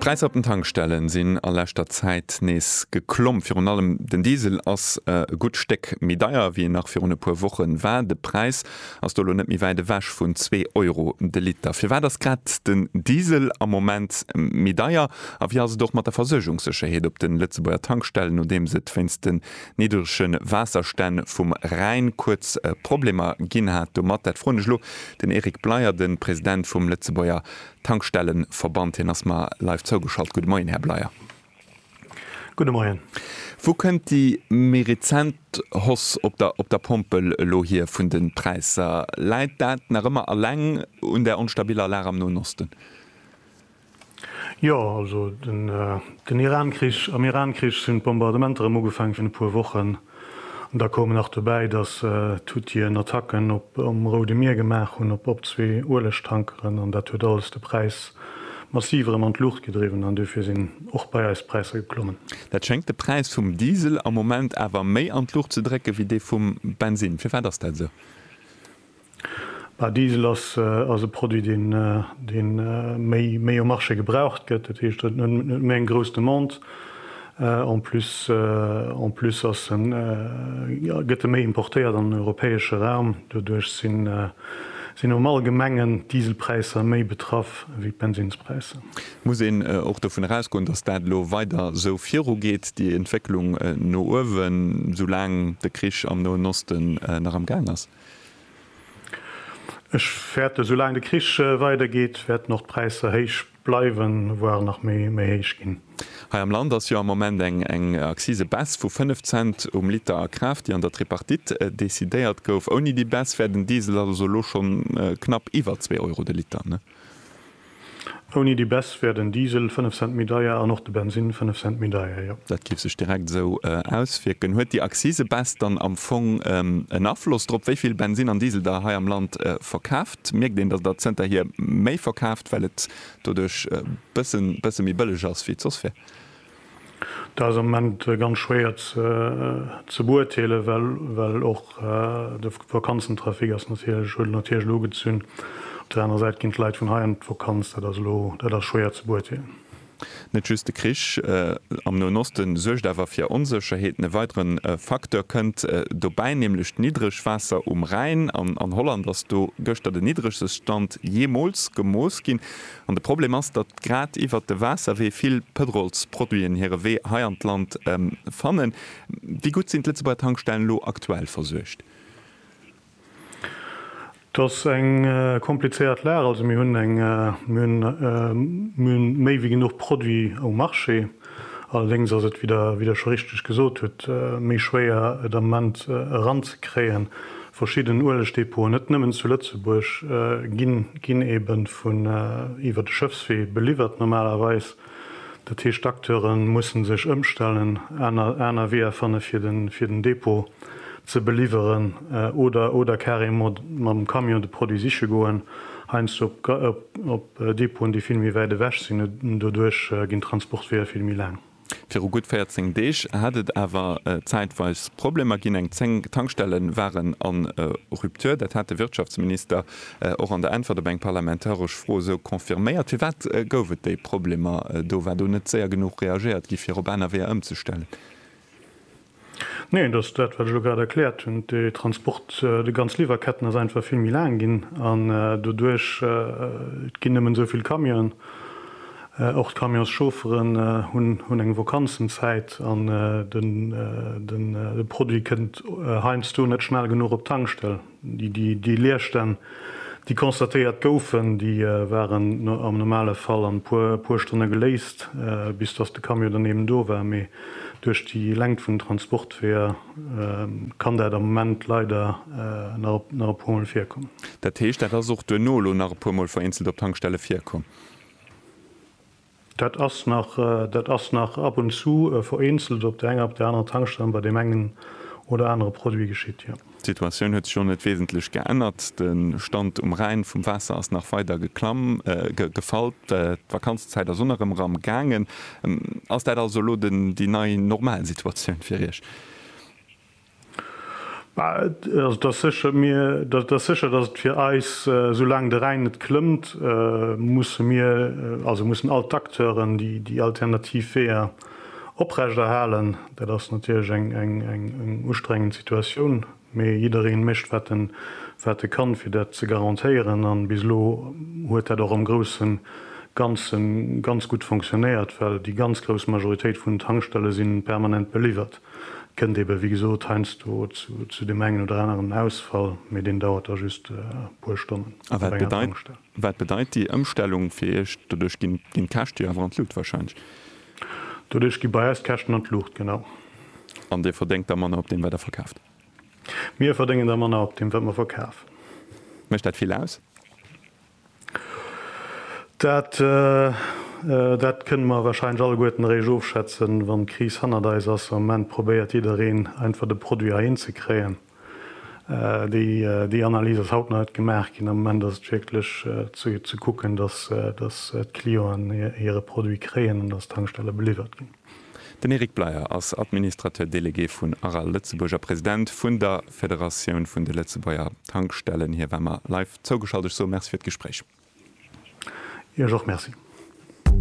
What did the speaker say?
D'Präisser op den Tankstellen sinn a leschter Zäit nees geklomm. Virun allem den Diesel ass e gutt Stéck méi deier, ewéi en nach virun e puer Woche war. De Präis ass do elo net méi wäit ewech vun zwee Euro de Liter. Firwat ass grad den Diesel am Moment méi deier a wéi ass et och mat der Versuergungssécherheet op de Lëtzebuerger Tankstellen, nodeems et wéinst de niddrege Waasserstänn vum Rhäin kuerz Problemer ginn hat domat? Dat froen ech lo den Eric Bleyer, de President vum Lëtzebuerger Tankstellenverband. Hien ass mer live zougeschalt. Gudde Moien, Här Bleyer. Gudde Moien. Wou kënnt déi méi rezent Hausse op der op der Pompel elo hier vun de Präisser? Läit dat nach ëmmer eleng un der onstabiller Lag am Noen Osten? Jo, also den Iran-Krich, am Iran-Krich sinn d'Bombardementer erëm ugefaange virun e puer Wochen. An da koumen nach dobäi, datt d'Huthien Attacken op um Roude Mier gemaach hunn, op op zwee Uelegtankeren. An dat huet alles de Präis massiv erëm an d'Luucht gedriwwen an dofir sinn och bei eis d'Präisser geklommen. Dat schéngt de Präis vum Diesel am Moment awer méi an d'Luucht ze drécken, wéi dee vum Bensinn. Firwat ass dat esou? Diesel ass e Produit, dee méi um Marché gebraucht gëtt. Dat heescht, et huet net méi eng grouss Demande. En plus, en plus ass e, gëtt e méi importéiert an den europäesche Raum. Doduerch sinn, sinn am Allgemengen d'Dieselpräisser méi betraff wéi d'Bensinnspräisser. Muss een och dovun erausgoen, dass dat elo weider esou virugeet, déi Entwécklung no uewen, soulaang de Krich am Noen Osten nach am Gaang ass? Ech fäerte sou laang de Krich weider geet, wäerten och d'Präisser héich bleiwen, voire nach méi méi héich ginn. Hei am Land ass jo am Moment eng eng Akzise-Baisse vu 5 Cent um Liter a Kraaft, déi an der Tripartite decidéiert gouf. Ouni déi Baisse wär den Diesel also elo schonn knapp iwwer zwee Euro de Liter. Ouni déi Baisse wär den Diesel 5 Cent méi deier an och de Bensinn 5 Cent méi deier, jo. Dat géif sech direkt esou auswierken. Huet déi Akzise-Baisse dann am Fong en Afloss drop, wéi vill Bensinn an Diesel der hei am Land verkaaft? Mierkt een, datt der zënterhier méi verkaaft, well et doduerch bësse méi bëlleg ass, wéi et soss wär? Dat ass am Moment ganz schwéier ze beurteelen, well och de Vakanzentrafic ass natierlech, huet natierlech elo gezunn. Op der anerer Säit ginn d'Leit vun hei an d'Vakanz, dat ass elo, dat ass schwéier ze beurteelen. Net just de Krich am Noen Oste suergt awer fir Onsécherheeten. E weidere Facteur kënnt dobäi, nämlech d'Niddregwaasser um Rhäin. An Holland ass do gëschter den niddregste Stand jeemools gemooss ginn. An de Problem ass, datt grad iwwert de Waasserwee vill Pëtrolsproduiten hire Wee hei an d'Land fannen. Wéi gutt sinn d'Lëtzebuerger Tankstellen elo aktuell versuergt? Et ass eng komplizéiert Lag. Also mir hunn eng, mir hunn, mir hunn méi wéi genuch Produit um Marché. Allerdéngs ass et, wéi Der scho richteg gesot hutt, méi schwéier et am Moment eranzekréien. Verschidden Uelegdepoten, net nëmmen zu Lëtzebuerg, ginn ebe vun iwwer de Schëffswee beliwwert normalerweis. Dat heescht, d'Acteure musse sech ëmstellen, aner Weeër fanne fir den Depot ze beliwweren oder carrément mam Camion de Produit siche goen, heiansdo op Depoten, déi vill méi wäit ewech sinn, an doduerch ginn d'Transportweeër vill méi laang. Viru gutt 14 Deeg hat et awer zäitweis Problemer ginn. Eng 10 Tankstelle waren a Rupture. Dat hat de Wirtschaftsminister och an der Äntwert op eng parlamentaresch Fro esou confirméiert. Firwat gouf et déi Problemer do? War do net séier genuch reagéiert gi fir op aner Weeër ëmzestellen? Neen, dat ass dat, wat ech elo grad erkläert hunn. De Transport, déi ganz Liwwerketten ass einfach vill méi laang ginn an doduerch, et ginn nëmmen esou vill Camionen. Och d'Camionschaufferen hunn eng Vakanzenzäit an de Produit kënnt heiansdo net schnell genuch op d'Tankstell. Déi Leerstänn, déi constatéiert goufen, déi waren am normale Fall an e puer Stonne geléist, bis datt de Camion dann eben do war. Mee duerch déi Längt vun den Transportweeër kann dat am Moment leider nach e puermol virkommen. Dat heescht, dat ass och duerno elo nach e puermol vereenzelt op Tankstelle virkomm? Dat ass nach, dat ass nach ab und zu vereenzelt op der enger, op der anerer Tankstellen bei deem engen oder anere Produit geschitt, jo. D'Situatioun huet sech och net wesentlech geännert. De Stand um Rhäin vum Waasser ass nach weider geklamm, gefall. D'Vakanzenzäit ass un erëm erm gaangen. Ass dat also elo déi nei Normalsituatioun fir Iech? Et ass sécher, datt et fir eis, soulaang de Rhäin net klëmmt, musse mir, also mussen all d'Acteuren, déi déi alternativ Weeër oprechterhalen. Dat ass natierlech eng ustrengend Situatioun, mee jidderee mécht wat e kann, fir dat ze garantéieren. A bis elo huet dat och am grousse Ganze ganz gutt fonctionéiert, well déi ganz grouss Majoritéit vun den Tankstelle si permanent beliwwert. Kënnt ebe wéi gesot heiansdo zu deem engen oder aneren Ausfall, mee deen dauert da just e puer Stonnen. A wat bedeit déi Ëmstellung fir Iech? Doduerch ginn d'Käschte jo awer an d'Luucht warscheinlech? Doduerch gi bei eis d'Käschten an d'Luucht, genau. An Dir verdéngt da manner op deem wat Der verkaaft? Mir verdéngen da manner op deem wat mer verkafen. Mécht dat vill aus? Dat, dat kënne mer warscheinlech alleguerten eréischt ofschätzen, wann d'Kris hannert eis ass. Am Moment probéiert jiddereen einfach de Produit heihin ze kréien. Déi, déi Analys ass haut nach net gemaach ginn. Am Moment ass et wierklech ze, ze kucken, dass, dass d'Clienten hire Produit kréien an dass d'Tankstelle beliwwert ginn. Den Eric Bleyer ass Administrateur délégué vun Aral Lëtzebuerg a President vun der Federatioun vun de Lëtzebuerger Tankstellen. Hie war mer live zougeschalt. Ech soe Merci fir d'Gespréich. Iech och Merci.